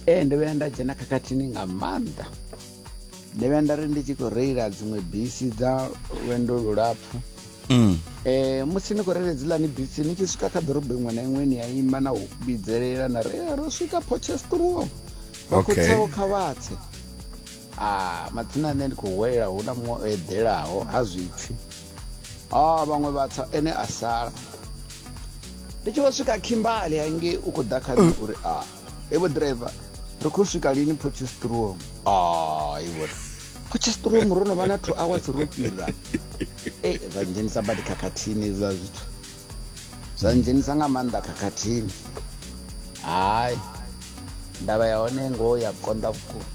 ee ndo vhuya nda dzhena khakhathini nga maanḓa ndo vhuya nda ri ndi tshi khou reila dziṅwe bisi dza lwendo lulapfhu um musi ni khou reila dzilani bisi ni tshi swika kha ḓorobo iṅwe na iṅwe ni ya ima na u vhidzelela na ri ro swika pochestruo vhakhotsaho kha vhatse a matsina ane ndi khou hwelela hu na muṅwe o eḓelaho ha zwipfi a vhaṅwe vha tsa ene a sala ndi tshi vho swika khimbali hangei u khou ḓa khani uri a evo driver ri khou swika lini potchestrom a ivo potchestrom ro no vha na two hours ro fhira e zwa ndzhenisa badi khakhathini hezwiḽa zwithu zwa ndzhenisa nga maanḓa khakhathini hayi ndavha ya hone ngoho ya konḓa vhukuma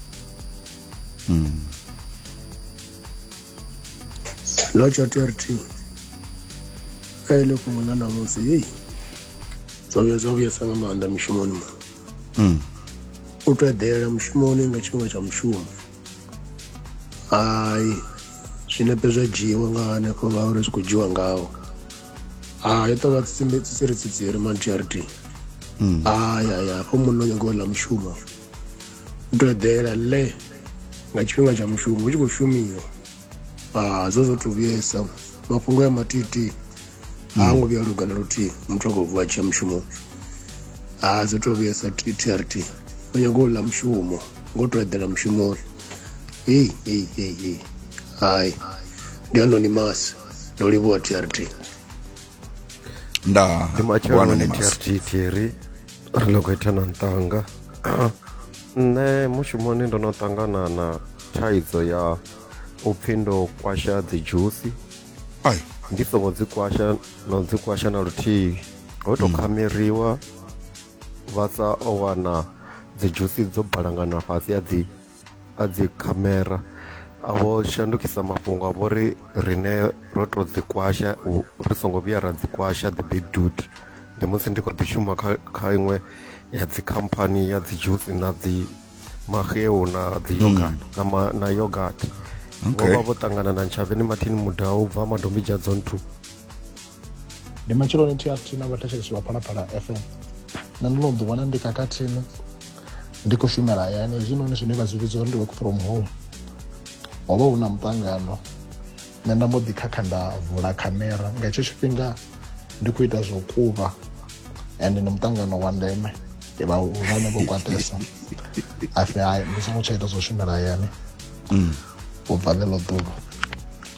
no tsho tea uri thi kha ele fhungo ḽa ṋamusi heyi zwo vhuya zwa vhuyesa nga maanḓa mishumoni mu hmm. u to eḓela mushumoni nga tshifhinga tsha mushumo hai zwinepe zwa dzhiiwa nga hanefho ngauri zwi khou dzhiwa ngawo hai to vha tsitsiri tsitsiri man charity hmm. hai hai hafho munna o nyago ḽa mushumo u to eḓela le nga tshifhinga tsha mushumo hu tshi khou shumiwa ah, zwo zwo to vhuyesa mafhungo ya matiti ha hmm. ngo vhuya luga na luthihi muthu a khou vuwa tshiya mushumoni ha ah, zwo to vhuyesa trt o nyago u ḽa mushumo ngo to eḓela mushumoni heyi heyi heyi heyi hai ndi anonymous ndo livhuwa trt nda ndi bwana matsheloni ni must. trg thiri ri ḽo khou ita na ntanga nṋe mushumoni ndo no ṱangana na thaidzo ya u pfhi ndo kwasha dzi dzhusi ai ndi songo dzi kwasha no dzi kwasha na luthihi ho tou khameriwa vha sa o wana dzi dzhusi dzo balangana fhasi a dzi a dzi khamera a vho shandukisa mafhungo a vho ri rine ro to dzi kwasha ri songo vhuya ra dzi kwasha the big dude ndi musi ndi kho ḓi shuma kha kha iṅwe ya dzi company ya dzi juice na dzi maxeu na dzi yogurt mm. na ma, na yogurt okay. vho vha vho ṱangana na ntshavheni mathini mudau bva madombidzha dzone two ndi matsheloni trt na vhathetshelesi vha phalaphala fm na ndo no ḓi wana ndi khakhathini ndi khou shumela hayani hezwinoni zwine vha zwi vhidza uri ndi work from home ho vha hu na muṱangano nṋe nda mbo ḓi khakha nda vula khamera nga hetsho tshifhinga ndi khou ita zwo kuvha and ndi muṱangano wa ndeme vha vhane vho kwatesa afi hayi ndi songo tsha ita zwo shumela hayani mm. u bva ḽeḽo ḓuvha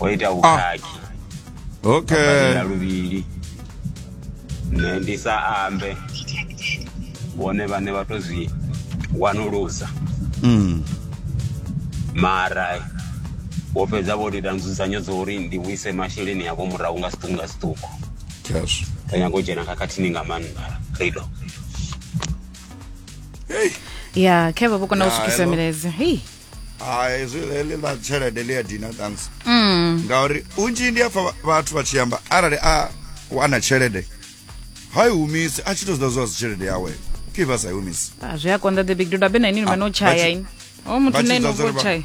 o ita vhukhakhi okay ya luvhili nṋe ndi sa ambe vhone vhane vha to zwi wanulusa mm. mara vho fhedza vho ita nzudzanyo dza uri ndi vhuise masheleni avho murahu nga siṱuku nga siṱuku yes ri nyago u dzhena khakhathini nga maanḓa rido hey ya khevha vho kona u Ya, swikisa hello. milaedza hei hai zwi heḽi ḽa tshelede ḽi a dina thanks mm. ngauri unzhi ndi afha vhathu vha tshi amba arali a wana tshelede ha i humisi a tshi to zida zwa tshelede yawe ke vha sa i humisi ah, zwi a konḓa the big duda bena ini vha no tshaya ini o muthu ne no vho tshaya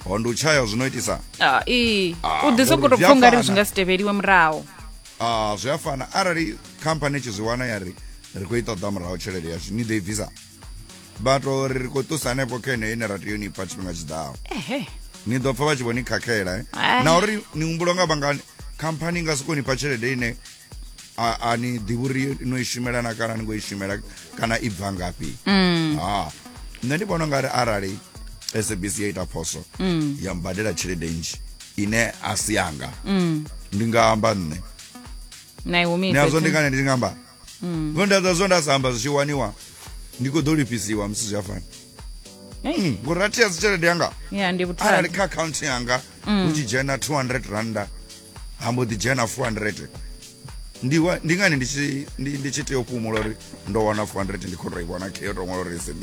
ho ndi u tshaya zwi no itisa ah, i ah, u ḓi sokou tou pfha ungari zwi nga si tevheliwe muraho a zwi a fana arali khamphani tshi zwi wana ya ri ri khou i ṱoḓa muraho tshelede yashu ni ḓo i bvisa bato ri ri khou ṱusa hanefho kha ine ine ra tea ni pfa tshifhinga tshiḓaho ni ḓo pfa vha tshi vho ni khakhela eh? eh. na uri ni humbulo nga vhangani khamphani nga soko ni pfa tshelede ine a ni ḓivhi uri no i shumela na kana ni ngo i shumela kana i bva ngafhi mm. ha nṋe ndi vhona ungari arali sabc ya ita phoso mm. ya mbadela tshelede nzhi ine a si yanga mm. ndi nga amba nṋe nazwo ndi ngani ndi nga amba zonda dza zwo nda sa amba zwi tshi waniwa ndi khou ḓo lifhisiwa musi zwi a fana Hey. Mm, ngori a tea dzi tshelede yanga ya ndi arali vhuthada kha akhaunthu yanga hu tshi dzhena 200 randa ha mbo ḓi dzhena 400 ndi wa- ndi ngani ndi tshi- ndi- ndi tshi tea u fhumula uri ndo wana 400 ndi khou tou i vhona khe yo tou ṅwala uri SABC